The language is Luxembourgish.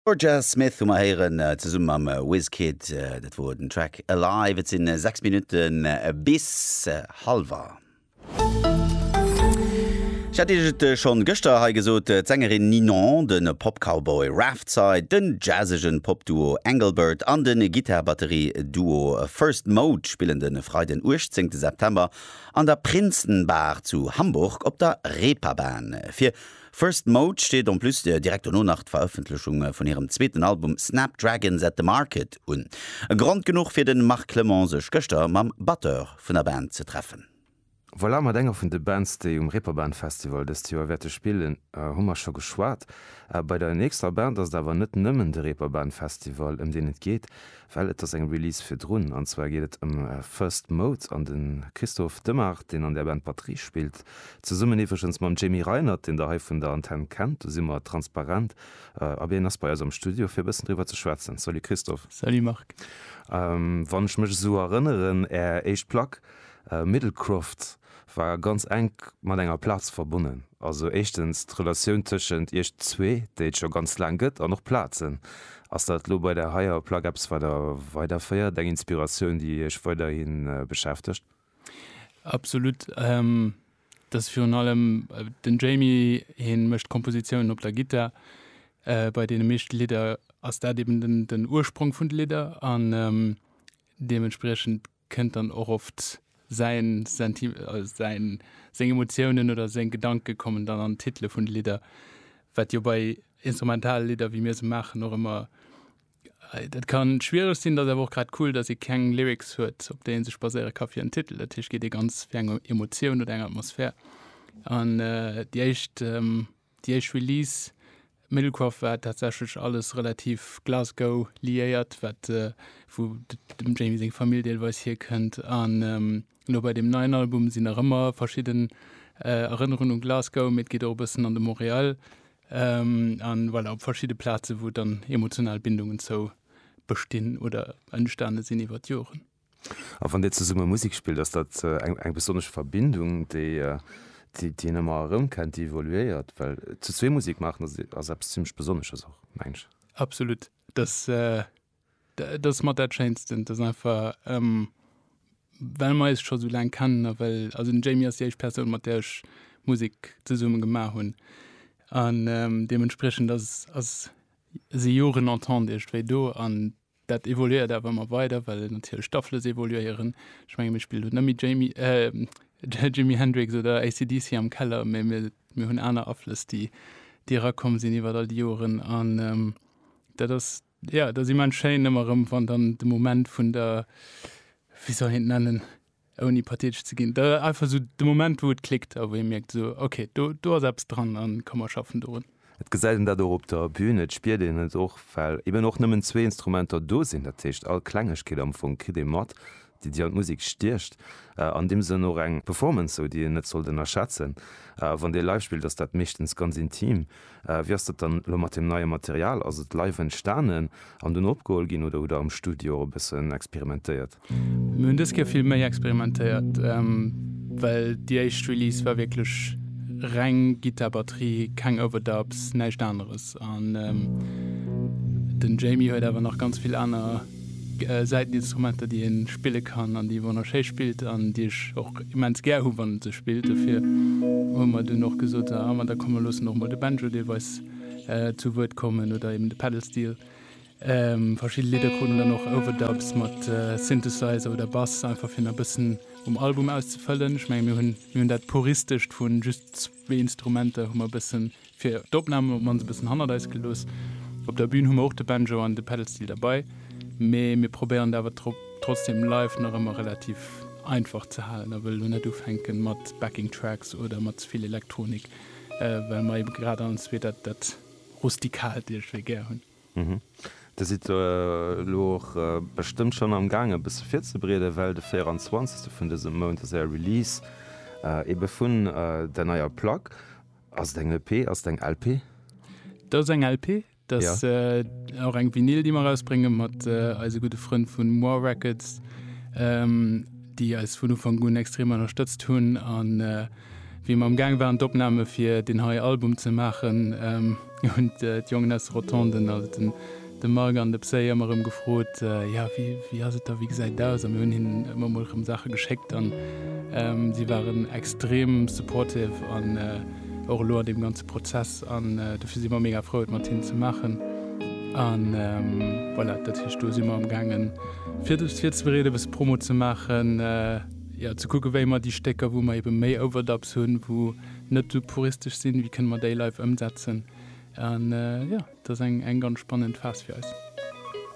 Jorja Smith hu mer héieren, zesumme mam Wizkid. Dat wor den Track Alive. Et sinn 6 Minutte bis halwer. Ech hat Iech et schonn gëschter hei gesot, d'Sängerin Ninon, de Pop-Cowboy Raftside, den jazzegen Pop-Duo Engelbert an de Gittar-Batterie-Duo First Mode spillen de Freiden 18 September an der Prinzenbar zu Hamburg op der Reeperbahn. Fir First Mode steet en plus direkt dono nach d'Verëffentlechung vun hirem zweeten Album Snapdragons At The Market un. E Grond genuch fir de Marc Clement sech gëschter mam Batteur vun der Band ze treffen. Voilà, mat enger vun de Bands, déi um Reeperbahn Festival dëst Joer wäerte spillen, hu mer scho geschwat. Bei der nächster Band ass et awer net nëmmen de Reeperbahn Festival, ëm deen et geet, Well et ass eng Release virdrun, an zwar geet et ëm First Mode an de Christophe Demart, deen an där Band Batterie spillt, zesummen iwwregens mam Jamie Reinert, deen der hei vun der Antenn kennt. Do si mer transparent a biergen ass bei eis am Studio fir e bëssen driwwer ze schwätzen. Salut Christophe. Salut Marc. Wann ech mech esou erënneren, Är éischt Plack Middlecroft, war ganz enk mat enger Plaz verbonnen. Also éischtens d'Relatioun tëschent iech zwee, déi et scho ganz laang gëtt, an och Plazen. Ass dat elo bei där haier Plack eppes, wat der weiderféiert, eng Inspiratioun, déi iech weiderhi beschäftegt? Absolut. Dat ass virun allem den Jamie. Hien mécht Kompositiounen op der Gittar. Bei deene meeschte Lidder ass dat eben den Ursprong vun de Lidder an deementspriechend, kënnt dann och oft säin Senti, säin, seng Emotiounen oder seng Gedanke kommen dann an d'Titele vun de Lidder, wat jo bei instrumentale Lidder, wéi mir se maachen, och ëmmer, dat ka schwiereg sinn. Dat ass awer och grad cool, dass ee keng Lyrics huet, op déi ee sech baséiere ka fir en Titel. Dat heescht, geet ee ganz fir eng Emotioun oder eng Atmosphär. An déi éischt Déi éischt Release Middlekroft war tatsächlech alles relativ Glasgow liéiert, wat wou dem Jamie seng Famill deelweis hierkënnt. An elo bei deem neien Album sinn nach ëmmer verschidden Erënnerungen u Glasgow, mee et geet och e bëssen an de Montréal a voilà op verschidde Plazen, wou dann emotional Bindungen zou bestinn oder entstane sinn iwwer d'Joren. A wann Dir zesumme Musek spillt, ass dat eng besonnesch Verbindung, déi een ëmmer erëmkennt, déi evoluéiert? Well zu zwee Musek maachen ass eppes zimmlech Besonnesches och, mengen ech. Absolut. Dat ass mat dat Schéinsten. Dat ass einfach, well mer eis scho sou laang kennen a well, also den Jamie ass déi éischt Persoun, mat där ech Musek zesumme gemaach hunn an deementspriechend ass, ass, si Joren Entente iergendwéi do an Dat evoluéiert awer ëmmer weider, well natierlech d'Aflëss evoluéieren. Ech menge mir spillen elo net méi Jamie, äh, Jimi Hendrix oder AC/DC am Keller, mä mir, mir hunn aner Aflëss, déi, déi erakomm sinn iwwert all déi Joren. An ähm, dat ass, jo, dat ass immens schéin ëmmer erëm, wann dann de Moment vun der, wéi soll een et nennen, ouni pathetesch ze ginn, einfach esou de Moment, wou et klickt a wou ee mierkt esou, okay, do, do ass eppes dran a komm mer schaffen dorun. Et gesäit een dat och op der Bün, et spiert een et och, well eben och nëmmen zwee Instrumenter do sinn. Dat heescht, all Klengegkeet am Fong kritt ee mat, déi déi an d'Musek stiecht. An deem Sënn och eng Performance esou, déi een net sollt ënnerschätzen. Wann Dir live spillt, ass dat meeschtens ganz intim. Wéi ass dat dann elo mat deem neie Material? Ass et live entstanen an dunn opgeholl ginn oder hutt Der am Studio och e bëssen experimentéiert? Mir hunn dës Kéier vill méi experimentéiert, well déi éischt Release war wierklech reng Gittar, Batterie, keng Overdubs, näischt aneres. An den Jamie huet awer nach ganz vill aner Säiteninstrumenter, déi ee spille kann an déi ee wonnerschéi spillt an déi ech och immens gär hu wann en se spillt. Dofir hu mer dunn och gesot, ah ma da komm mer loossen och mol de Banjo deelweis zu Wuert kommen oder eben de Pedal Steel. Verschidde Lidder kruten dann och Overdubs mat Synthesizer oder Bass, einfach fir nach e bëssen um Album auszefëllen. Ech menge mir hunn mir hunn dat Puristescht vu just zwee Instrumenter hu mer e bëssen fir d'Opnamen op d'mannst e bëssen hannert eis gelooss. Op der Bün hu mer och de Banjo an de Pedalsteel derbei, mee mir probéieren et awer trotzdeem live nach ëmmer relativ einfach ze halen a wëlle lo net ufänke mat Backing Tracks oder mat ze vill Elektronik, well mer eebe grad anzwee dat Rustikalt iergendwéi gär hunn. Dir sidd elo och bestëmmt schonn am gaangen e bësse virzebereeden, well de 24 vun dësem Mount ass är Release ebe vun där neier Plack. Ass et eng EP, ass et eng LP? Dat ass eng LP, dat ass och eng Vinyl déi mer erausbrénge mat eise gudde Frënn vu Moir Records, déi eis vun Ufank un extrem ënnerstëtzt hunn. Wéi mer am Gaang waren d'Opname fir deen hei Album ze maachen, hunn d'Jongen aus de Rotonden, also de Marc an de Psy ëmmer erëm gefrot, jo wéi ass et da, wéi gesäit et aus? A mir hunn hinnen ëmmer emol erëm Saache geschéckt an si waren extrem supportive an och elo an deem ganze Prozess an dofir si mer mega frou et mat hinnen ze maachen. A voilà, dat heescht do si mer am Gaangen virzebereeden, e bësse Promo ze maachen. jo ze kucken wéi mer déi Stécker wou mer eben méi Overdubs hunn, wou net esou puristesch sinn, wéi kënne mer déi live ëmsetzen an jo dat ass eng eng ganz spannend Phase fir eis.